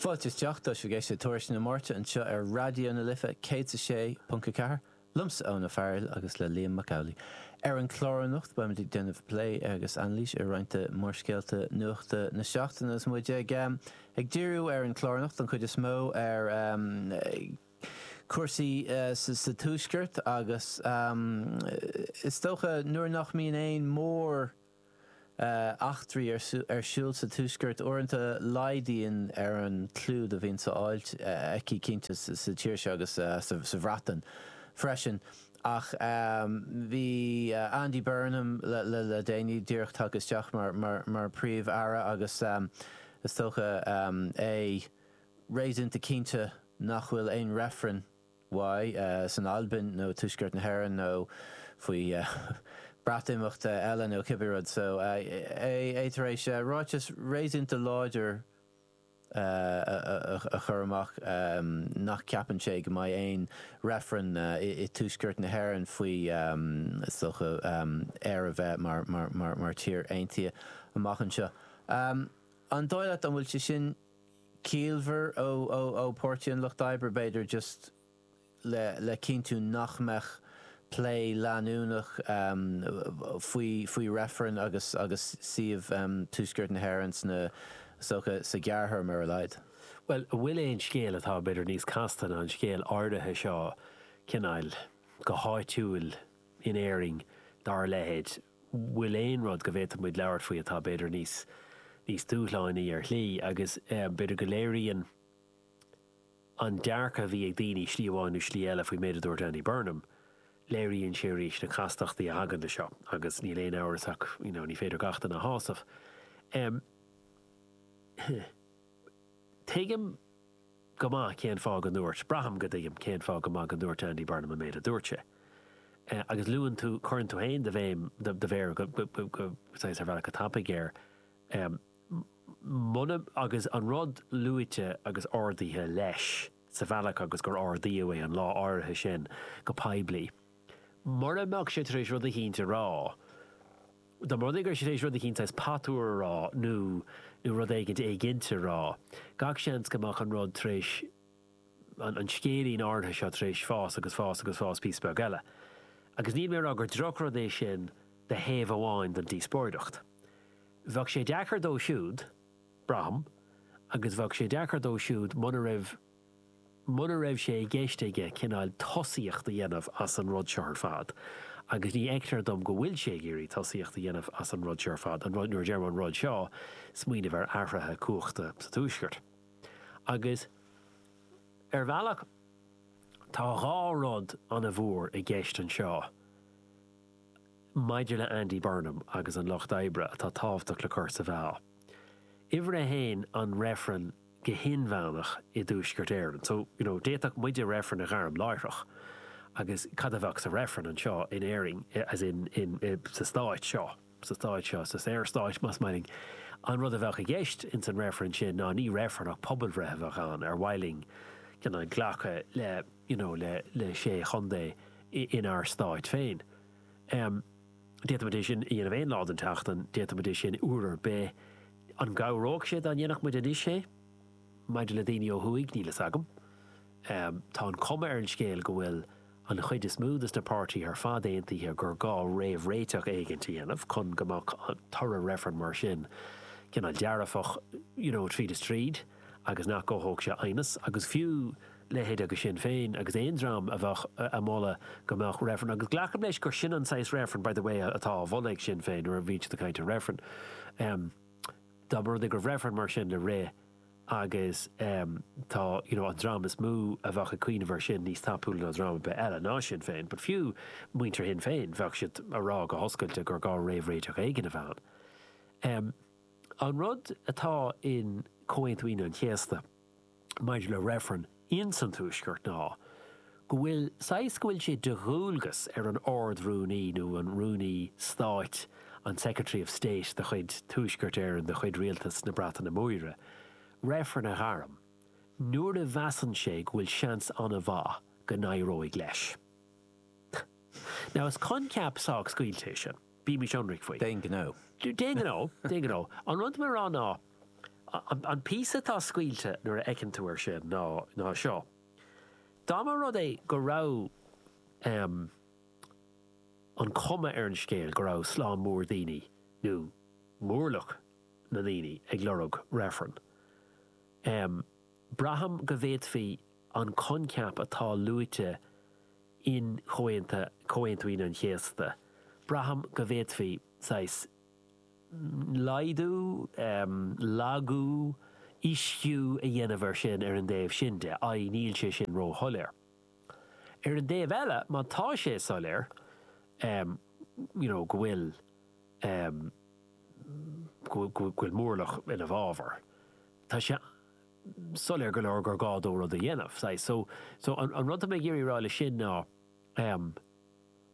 Fáilte isteach, tá sibh ag éisteacht le Tuairisc na Máirte anseo ar Raidió na Life céad is a sé ponc a ceathair, liomsa Eoin Ó Fearghail agus le Liam Mac Amhlaigh. Ar an chlár anocht beimid ag déanamh plé agus anailís ar roinnt de mhórscéalta nuachta na seachtaine agus muid ag ag díriú ar an chlár anocht don chuid is mó ar chúrsaí sa Tuaisceart agus is dócha nuair nach mbíonn aon mhór eachtraí ar siúl sa Tuaisceart uaireanta laghdaíonn ar an clúdach a bhíonn ar fáil aici cinnte sa tír seo agus sa Bhreatain freisin ach bhí Andy Burnham le déanaí díreach tagtha isteach mar Príomh-Aire agus is dócha é réasúnta cinnte nach bhfuil aon reifreann san Albain nó Tuaisceart na hÉireann nó faoi Breatimeachta eile nó cibé rud so, é tar éis ráiteas réasúnta láidir a chur amach nach ceapann sé go mbeidh aon reifreann i dTuaisceart na hÉireann faoi is dócha Éire a bheith mar tír aontaithe amach anseo. An dóigh leat an bhfuil sé sin ciallmhar ó Páirtí an Lucht Oibre b'fhéidir just le cinntiú nach mbeadh plé leanúnach faoi faoi reifreann agus suíomh Tuaisceart na hÉireann is dócha sa ghearrthéarma ar a laghad. Bhuel, an bhfuil aon scéal atá b'fhéidir níos casta ná an scéal áirithe seo, cineál, go háitiúil in Éirinn dá leithéid? bhfuil aon rud go bhféadfaimis labhairt faoi atá b'fhéidir níos níos dúshlánaí ar shlí agus b'fhéidir go léiríonn an dearcadh a bhí ag daoine slí amháin nó slí eile faoin méid a dúirt Andy Burnham, léiríonn sé arís na castachtaí a thagann leis seo agus níl aon amhras ach you know ní féidir gach duine a shásamh. Em. Tuigim. go maith cén fáth go ndúirt, braithim go dtuigim cén fáth go maith go ndúirt Andy Burnham an méid a dúirt sé. Agus luann tú, cuireann tú féin do bhéim, do mhéar saghas ar bhealach go tapaidh air. Muna, agus an rud luaite agus ardaithe leis sa bhealach agus gur ardaíodh é an lá áirithe sin go poiblí, mura mbeadh sé tar éis rud eicínt a rá, Dá mba rud é go raibh sé tar éis rud eicínt saghas patuar a rá nó nó rud éigint éiginnte a rá, gach seans go mbeadh an rud tar éis, an scéilín áirithe seo tar éis fás agus fás agus fás píosa beag eile. Agus níl mé a rá gur drochrud é sin do thaobh amháin don díospóireacht. Bheadh sé deacair dó siúd, braithim, agus bheadh sé deacair dó siúd muna raibh, muna raibh sé i gceist aige cineál tosaíocht a dhéanamh as an rud seo ar fad, agus ní fheictear dom go bhfuil sé ag iarraidh tosaíocht a dhéanamh as an rud seo ar fad, an rud, nuair a deirim an rud seo, smaoineamh ar athruithe cumhachta sa Tuaisceart. Agus ar bhealach tá dhá rud ana mhór i gceist anseo maidir le Andy Burnham agus an Lucht Oibre atá tábhachtach le cur sa mheá. Uimhir a haon, an reifreann go hinmheánach i dTuaisceart Éireann. So, you know, d'fhéadfadh muide reifreann a ghairm láithreach agus cad a bheadh sa reifreann anseo in Éirinn, as in, in, sa Stát seo, sa Stát seo, sa Saorstát, más maith linn. An rud a bheadh i gceist ins an reifreann sin ná ní reifreann ach pobalbhreith a bheadh ann, ar mhaith linn, you know, glacadh le, you know, le, le sé chontae inár Stát féin. D'fhéadfaimis é sin a dhéanamh aon lá den tseachtain, d'fhéadfaimis é sin uair ar bith. An gcabhródh sé dá ndéanfadh muid anois é? Maidir le daoine ó thuaidh, níl fhios agam. Tá an chuma ar an scéal go bhfuil an chuid is mó des na páirtithe ar fad aontaithe gur gá réamhréiteach éigint a dhéanamh chun go mbeadh toradh reifrinn mar sin cineál dearfach, you know, tríd is tríd agus nach gcothódh sé aighneas agus fiú. leithéidí Sinn Féin agus aon dream a bheadh a' moladh go mbeadh reifreann, agus glacaim leis gur sin an saghas reifrinn, by the way, atá á mholadh ag Sinn Féin, nuair a bhíonn siad ag caint ar reifreann. Dá mba rud é go raibh reifreann mar sin le rith agus tá, you know, an dream is mó a bheadh ag cuimhneamh ar sin níos tapúla ná dream ar bith eile, ná Sinn Féin, but fiú muintir Shinn Féin, bheadh siad a' rá go hoscailte gur gá réamhréiteach éigin a bheith ann. An rud atá in Comhaontú Aoine an Chéasta, maidir le reifreann ins an Tuaisceart ná go bhfuil, saghas, go bhfuil sé de dhualgas ar an Ard-Rúnaí nó an Rúnaí Stáit, an Secretary of State de chuid Tuaisceart Éireann, de chuid Rialtas na Breataine Móire, reifreann a ghairm nuair a mheasann sé go bhfuil seans an-mhaith go n-éireodh leis. Now is coincheap sách scaoilte é sin, bímís ionraic faoi. D'aon ghnó. D'aon ghnó, d'aon ghnó. An rud mar atá. An píosa atá scaoilte nuair a fheiceann tú ar sin ná seo. Dá mba rud é go raibh an cuma ar an scéal go raibh slám mór daoine nó mórlach na ndaoine ag lorg reifreann, braithim go bhféadfaí an coincheap atá luaite in Comhaonta, Comhaontú Aoine an Chéasta, braithim go bhféadfaí saghas laghdú, lagú, ísliú a dhéanamh air sin, ar an dtaobh sin de, i. níl sé sin ró-shoiléir. Ar an dtaobh eile, má tá sé soiléir, you know, go bhfuil, go bhfuil móramh ina bhfabhar, tá sé soiléir go leor gur gá dó rud a dhéanamh, saghas. So, an rud atá mé ag iarraidh a rá leis sin ná,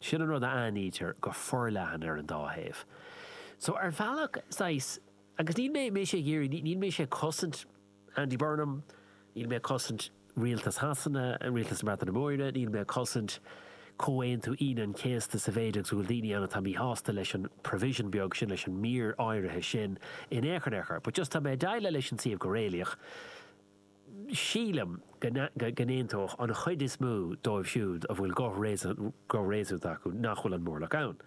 Sin an rud a aithnítear go forleathan ar an dá thaobh. So, ar bhealach, saghas, agus níl mé, mé sé ag iarraidh, níl mé sé ag cosaint Andy Burnham, níl mé ag cosaint Rialtas Shasana, Rialtas na Breataine Móire, níl mé ag cosaint Comhaontú Aoine an Chéasta sa mhéid agus go bhfuil daoine ann atá míshásta leis an provision beag sin, leis an mír áirithe sin in aon chor, in aon chor. But just tá mé ag déileáil leis an suíomh go réalaíoch. Sílim go n-aontódh an chuid is mó díobh siúd a bhfuil guth réasúnta acu nach bhfuil an móramh ann.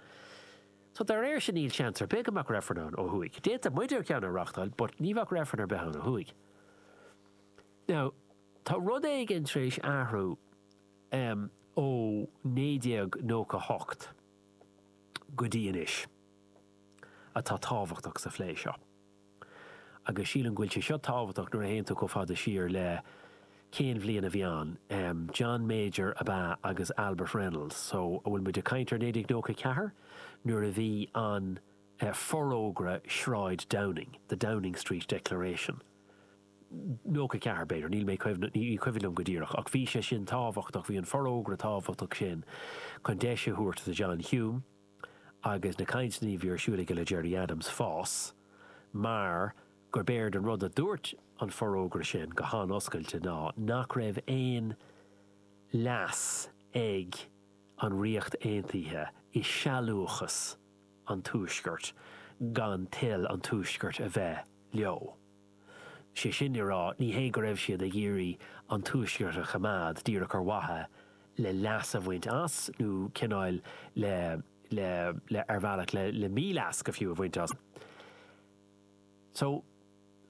So dá réir sin níl seans ar bith go mbeadh reifreann ann ó thuaidh. D'fhéadfadh muide ceann a reáchtáil but ní bheadh reifreann ar bith ann ó thuaidh. Now tá rud éigin tar éis athrú ó 1998 go dtí anois atá tábhachtach sa phlé seo. Agus sílim go bhfuil sé seo tábhachtach nuair a théann tú chomh fada siar le, cén bhliain a bhí ann? em. John Major ab ea agus Albert Reynolds. So, an bhfuil muid ag caint ar 1994? Nuair a bhí an eh, Forógra Shráid Downing, The Downing Street Declaration. 94 b'fhéidir, níl mé ag cuimhneamh, ní cuimhin liom go díreach ach bhí sé sin tábhachtach, bhí an forógra tábhachtach sin chun deis a thabhairt do John Hume, agus na cainteanna a bhí ar siúl aige le Gerry Adams fás mar gurb é an rud a dúirt an forógra sin go han-oscailte ná nach raibh aon leas ag an Ríocht Aontaithe i sealúchas an Tuaiscirt gan toil an Tuaiscirt a bheith leo. Sé sin le rá, ní hé go raibh siad ag iarraidh an Tuaisceart a choimeád díreach ar mhaithe le leas a bhaint as nó cineál le, le, le, ar bhealach le, le mí-leas go fiú a bhaint as. So,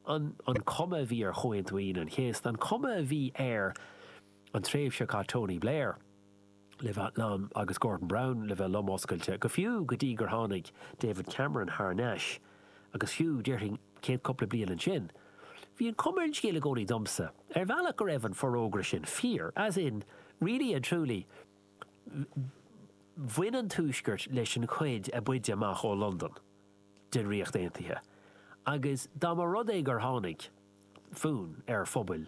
an, an chuma a bhí ar Chomhaontú Aoine an Chéasta, an chuma a bhí ar an tréimhse seo Tony Blair, le bheith lom agus Gordon Brown le bheith lom oscailte, go fiú go dtí gur tháinig David Cameron thar nais agus fiú, déarfainn, céad cúpla bliain ansin. Bhí an cuma ar an scéal i gcónaí domsa, ar bhealach, go raibh an forógra sin fíor, as in, really and truly, bhain an Tuaisceart leis an chuid a b'fhaide amach ó Londain den Ríocht Aontaithe agus dá mba rud é gur tháinig fonn ar phobail,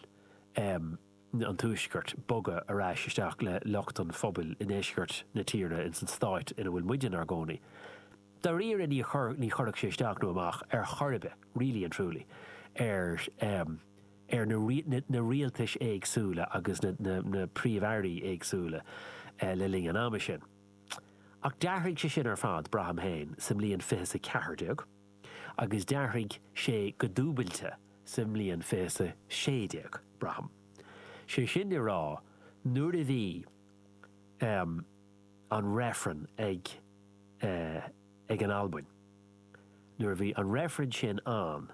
eh, an Tuaisceart bogadh ar ais isteach le lucht an phobail i ndeisceart na tíre ins an stáit in a bhfuil muid inár gcónaí. Dáiríre ní chuir, ní chuirfeadh sé isteach nó amach ar chor ar bith, really and truly, ar, ehm, ar na, na, na rialtais éagsúla agus na, na, na príomh-airí éagsúla le linn an ama sin. Ach d'athraigh sé sin ar fad, braithim fhéin, sa mbliain 2014. agus d'athraigh sé go dúbailte sa mbliain 2016, braithim. 'Sé sin le rá, nuair a bhí, ahem, an Reifreann ag eh, ag an Albain, nuair a bhí an Reifreann sin ann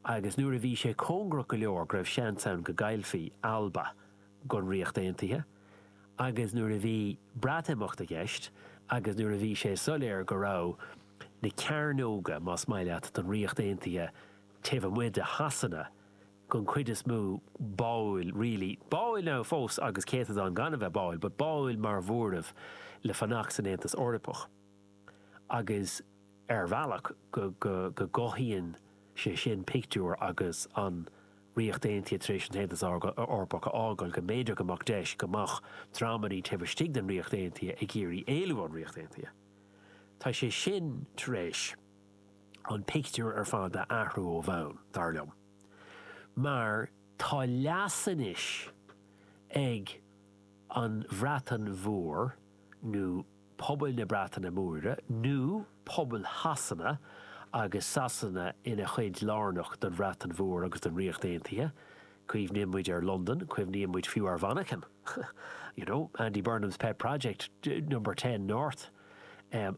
agus nuair a bhí sé cóngarach go leor go raibh seans ann go gcaillfí Alba gon Ríocht Aontaithe, agus nuair a bhí Breatimeacht i gceist agus nuair a bhí sé soiléir go raibh na cearnóga, más maith leat, don Ríocht Aontaithe taobh amuigh de Shasana, den chuid is mó, báúil, really, báúil now fós agus céatadán gan a bheith báúil, but báúil mar mhóramh le fanacht san Aontas Eorpach agus. ar bhealach go gcothaíonn sé sin pictiúr agus an Ríocht Aontaithe tar éis an tAontas Eorpach a fhágáil go mb'fhéidir go mbeadh deis go mbeadh dreamannaí taobh istigh den Ríocht Aontaithe ag iarraidh éalú ón Ríocht Aontaithe. Tá sé sin tar éis an pictiúr ar fad a athrú ó bhonn, dar liom, mar tá leas anois ag an Bhreatain Mhór nó, pobail na Breataine Móire nó pobail Shasana agus Sasana ina chuid lárnach don Bhreatain Mhór agus don Ríocht Aontaithe, cuimhníonn muid ar Londain, cuimhníonn muid fiú ar Mhanchain, you know, Andy Burnham's pet project, Number Ten North, an.